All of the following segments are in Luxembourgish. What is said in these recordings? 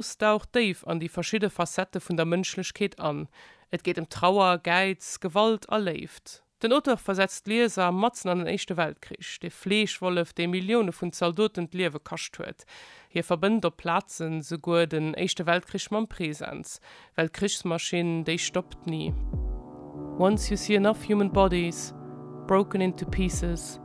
D'Rose daucht déif an déi verschidde Facettë vun der Mënschlechkeet an. Et geet ëm Trauer, Gäiz, Gewalt a Léift. Den Auteur versetzt d'Lieser matzen an den Éischte Weltkrich. De Fleeschwollef, dee Millioune vun Zaldoten d'Liewe kascht huet. Hie verbënnt op Plazen souguer den Éischte Weltkrich mam Presens. Well d'Krichsmaschinn, déi stoppt ni. Once you see enough human bodies broken into pieces.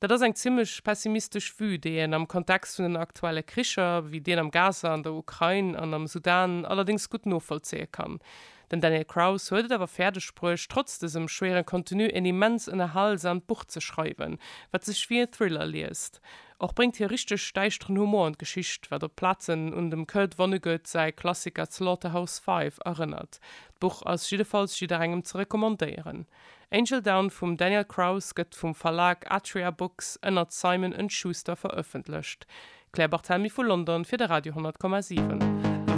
Dat ass eng zimlech pessimistesch Vue, déi een am Kontext vun den aktuelle Kricher, wéi deen am Gaza, an der Ukrain an am Sudan, allerdéngs gutt novollzéie kann. Den Daniel Kraus huet et awer fäerdeg bruecht, trotz dësem schwéieren Contenu een immens ënnerhalsamt Buch ze schreiwen, wat sech wéi en Thriller liest. Och bréngt hie richteg däischteren Humor an d'Geschicht, wat op Plazen un dem Kurt Vonnegut säi Klassiker Slaughterhouse-Five erënnert. D'Buch ass jiddefalls jidderengem ze recommandéieren. Angel Down vum Daniel Kraus gëtt vum Verlag Atria Books ënnert Simon and Schuster verëffentlecht. Claire Barthelmy vu London fir de Radio 10,7.